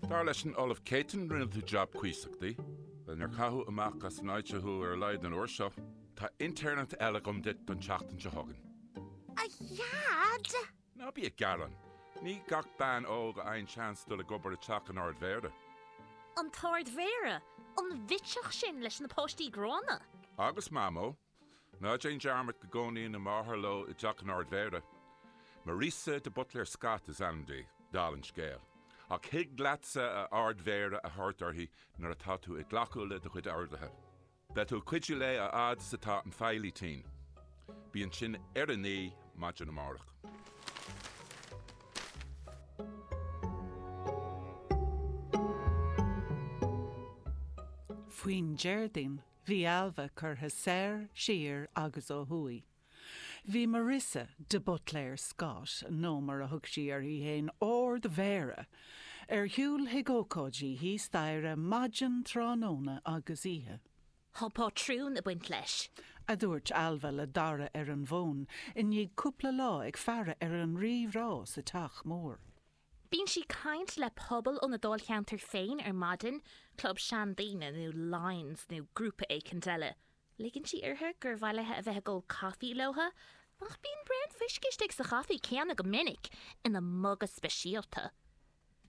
Dar leis an Ollamh Céitinn, rinne tú jab cuíosach. Bhuel, níor caitheadh amach as an áit thú ar a laghad an uair seo, tá intéirneacht eile agam duit don tseachtain seo chugainn. A Dhaid! Ná bí ag gearán. Ní gach bean óg a fhaigheann seans dul ag obair i dteach an Ard-Mhéara. An tArd-Mhéara? An bhitseach sin leis na páistí gránna? Agus Mamó, Ná déan dearmad go gcónaíonn a máthair leo i dteach an Ard Mhéara. Marisa de Buitléir Scott is ainm di, dála an scéil. Ach thig leatsa a Ard Mhéara a thabhairt uirthi nuair atá tú ag glacadh le do chuid orduithe. Beidh tú ag cuidiú léi a fhad is atá an feighlí tinn. Bí ansin ar a naoi maidin amárach. Faoin Déardaoin, Bhí Ailbhe curtha soir, siar agus ó thuaidh. Bhí Marissa, de Butléir Scott, nó mar a thug sí uirthi fhéin, Árd Mhéara, ar siúl chuig ócáidí thíos staighre, maidin, tráthnóna agus oíche. Tá pátrún ag baint leis. a dúirt Ailbhe le Dara ar an bhfón i ndiaidh cúpla lá ag faire ar an rí rá sa teach mór. Bíonn sí ag caint le pobal óna dáilcheantar féin ar maidin, club seandaoine nó Lions nó grúpa éicint eile. Ligeann sí uirthi gur mhaith léi a bheith ag ól caife leo, ach bíonn braon fuisce istigh sa chaife céanna go minic, ina muga speisialta.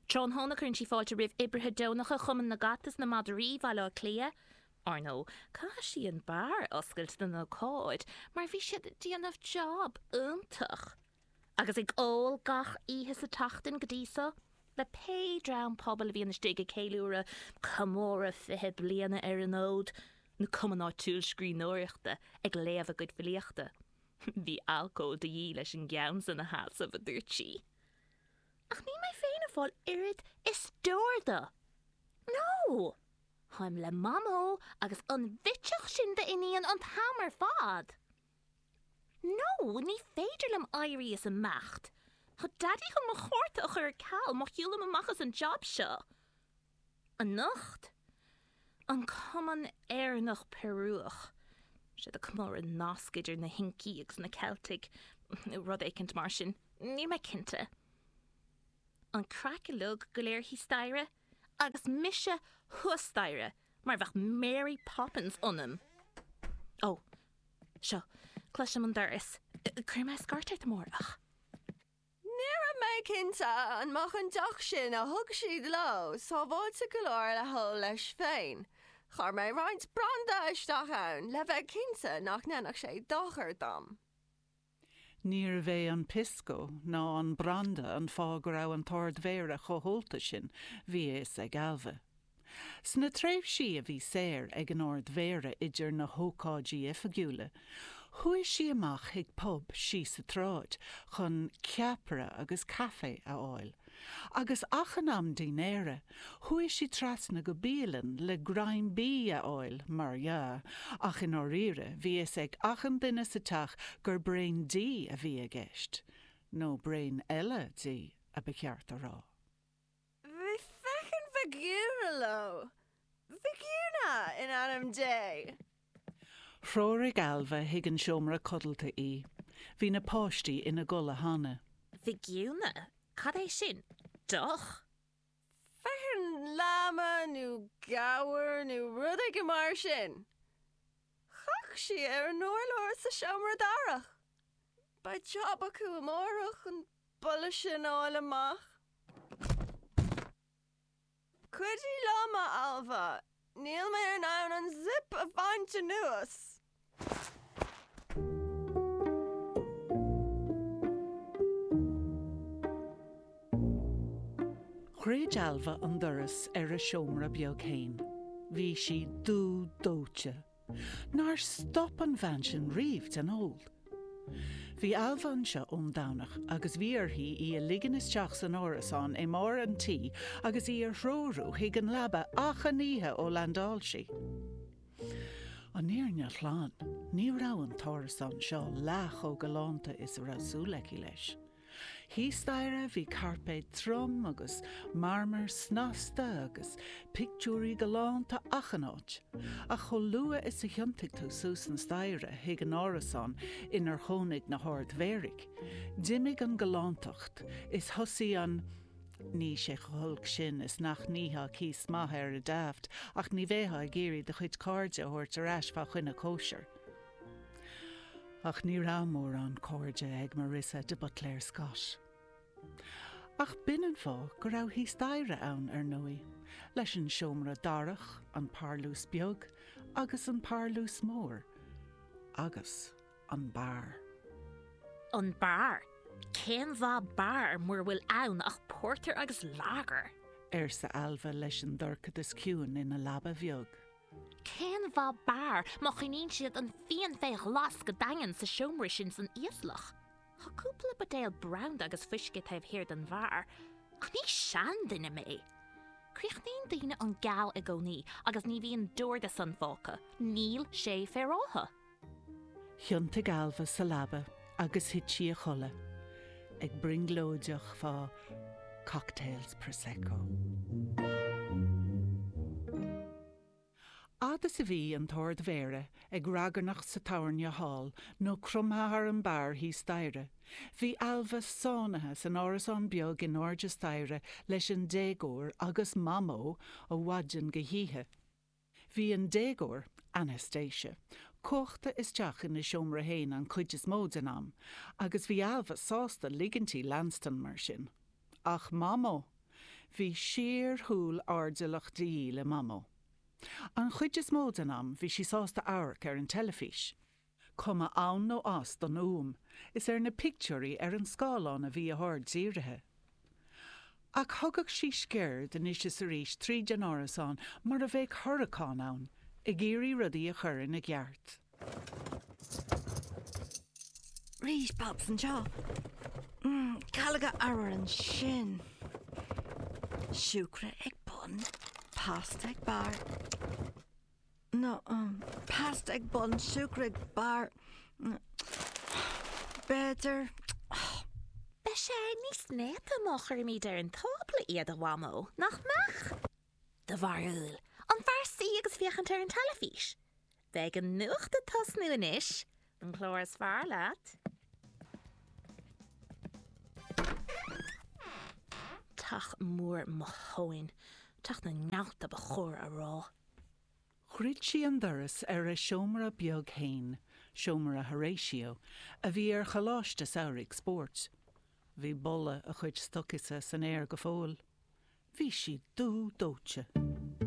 Tráthnóna cuireann sí fáilte roimh oibrithe deonacha Chumann na gCat is na Madraí Bhaile Átha Cliath. Ár ndó, caithfidh sí an beár a oscailt don ócáid mar bhí siad ag déanamh jab iontach. agus ag ól gach oíche sa tseachtain go dtí so, le pé dream pobail a bhíonn istigh ag ceiliúradh comóradh fiche bliana ar an fhód, nó cumann áitiúil scríbhneoireachta ag léamh a gcuid filíochta. Bhí alcól de dhíth leis an gceann san a sheasamh, a dúirt sí. Ach níl mé féin ag fáil oiread is deoir de. No! Táim le Mamó agus an bhitseach sin d'iníonn an t-am ar fad! No, ní féidir liom éirí is imeacht. Tá Daidí chun mo chárta a chur ar ceal má shiúlaim amach as an jab seo. Anocht, an Cumann Éireannach-Peiriúch, 'sé do chomóradh nasc idir na hIncigh agus na Ceiltigh, nó rud éicint mar sin, níl mé cinnte. An craic uilig go léir thíos staighre? agus mise thuas staighre mar bheadh Mary Poppins ionam. Ó, seo, cloisim an doras. Cuirfidh mé scairt ort amárach. Ní raibh mé cinnte an mbeadh an deoch sin a thug siad leo sábháilte go leor le hól leis féin. Chuir mé roinnt branda isteach ann le bheith cinnte nach ndéanfadh sé dochar dom. Níorbh é an pisco ná an branda an fáth go raibh an tArd-Mhéara chomh ólta sin, bhí a fhios ag Ailbhe. Sna tréimhsí a bhí saor ag an Ard-Mhéara idir na hócáidí oifigiúla, chuaigh sí amach chuig pub síos an tsráid chun ceapaire agus caifé a fháil. Agus achan am dinnéara, chuaigh sí trasna go bialann le greim bídh a fháil, mar dhea, ach i ndáiríre, bhí a fhios ag achan duine sa teach gur braon dí a bhí i gceist. Nó braon eile dí, a ba cheart a rá. Bhí feckin' vicuña leo. Vicuña, in ainm Dé! Threoraigh Ailbhe chuig an seomra codlata í. Bhí na páistí ina gcodladh cheana. Vicuña, cad é sin? Deoch? Feckin' láma nó gabhar nó rud éigin mar sin. Chaith sí ar an urlár sa seomra darach. Beidh jab acu amárach an boladh sin a fháil amach. Cuidigh liom, a Ailbhe, níl mé in ann an zip a bhaint anuas! Dhruid Ailbhe an doras ar a seomra beag fhéin. Bhí sí dubh dóite. Nár stop an bhean sin riamh den ól. Bhí Ailbhe anseo ón Domhnach agus bhí uirthi í a ligean isteach san árasán i mbarr an tí agus í a threorú chuig an leaba achan oíche ó landáil sí. An fhírinne ghlan, ní raibh an t-árasán seo leath chomh galánta is a raibh súil aici leis. Thíos staighre bhí cairpéad trom agus marmar snasta agus pictiúirí galánta achan áit, ach chomh luath is a thiontaigh tú suas na staighre chuig an árasán inar chónaigh na hArd-Mhéaraigh, d'imigh an ghalántacht is thosaigh an, Níl sé chomh holc sin is nach n-íocfá cíos maith air ar Daft, ach ní bheifeá ag iarraidh do chuid cairde a thabhairt ar ais fá choinne cóisire. Ach ní raibh mórán cairde ag Marissa de Buitléir Scott. Ach b'in an fáth go raibh thíos staighre ann, ar ndóigh, leis an seomra darach, an parlús beag agus an parlús mór, agus an beár. An beár? Cén mhaith beár mura bhfuil ann ach pórtar agus lágar? arsa Ailbhe leis an dorchadas ciúin ina leaba bheag. Cén mhaith beár má choinníonn siad an fíon fé ghlas go daingean sa seomra sin san íoslach? Tá cúpla buidéal branda agus fuisce taobh thiar den bheár, ach ní seanduine mé! Críochnaíonn daoine an fíon geal i gcónaí agus ní bhíonn d'ordú-san fágtha, níl sé féaráilte. Thiontaigh Ailbhe sa leaba agus thit sí a chodladh, ag brionglóideach fá cocktails Prosecco. Fhad is a bhí an tArd-Mhéara ag ragairneacht sa tabhairne thall nó cromtha thar an beár thíos staighre, bhí Ailbhe sáinnithe san árasán beag in airde staighre leis an déagóir agus Mamó ó mhaidin go hoíche. Bhí an déagóir, Anastacia, cuachta isteach ina seomra fhéin an chuid is mó den am, agus bhí Ailbhe sásta ligint di leanstan mar sin. Ach Mamó! Bhí síorshiúl airdeallach de dhíth le Mamó. An chuid is mó den am, bhí sí sásta amharc ar an teilifís. Cuma ann nó as don fhuaim, is ar na pictiúirí ar an scáileán a bhí a haird dírithe. Ach thugadh sí sciuird anois is arís tríd an árasán mar a bheadh hurracán ann, ag iarraidh rudaí a chur ina gceart. Rís pops anseo. Calóga arbhair ansin. Siúcra ag bun, pasta ag barr. nó pasta ag bun siúcra ag barr b'fhéidir. Bheadh sé níos néata má chuirimid ar an tábla iad a Mhamó, nach mbeadh? Do bharúil, an fearr suí agus féachaint ar an teilifís? Beidh an nuacht ag tosnú anois, An clár is fearr leat? Teach mór mo thóin. Teach na ngealt ba chóir a rá. Dhruid sí an doras ar a seomra beag fhéin, seomra Horatio, a bhí ar Choláiste Samhraidh Spóirt. Bhí boladh a chuid stocaí san aer go fóill. Bhí sí dú dóite.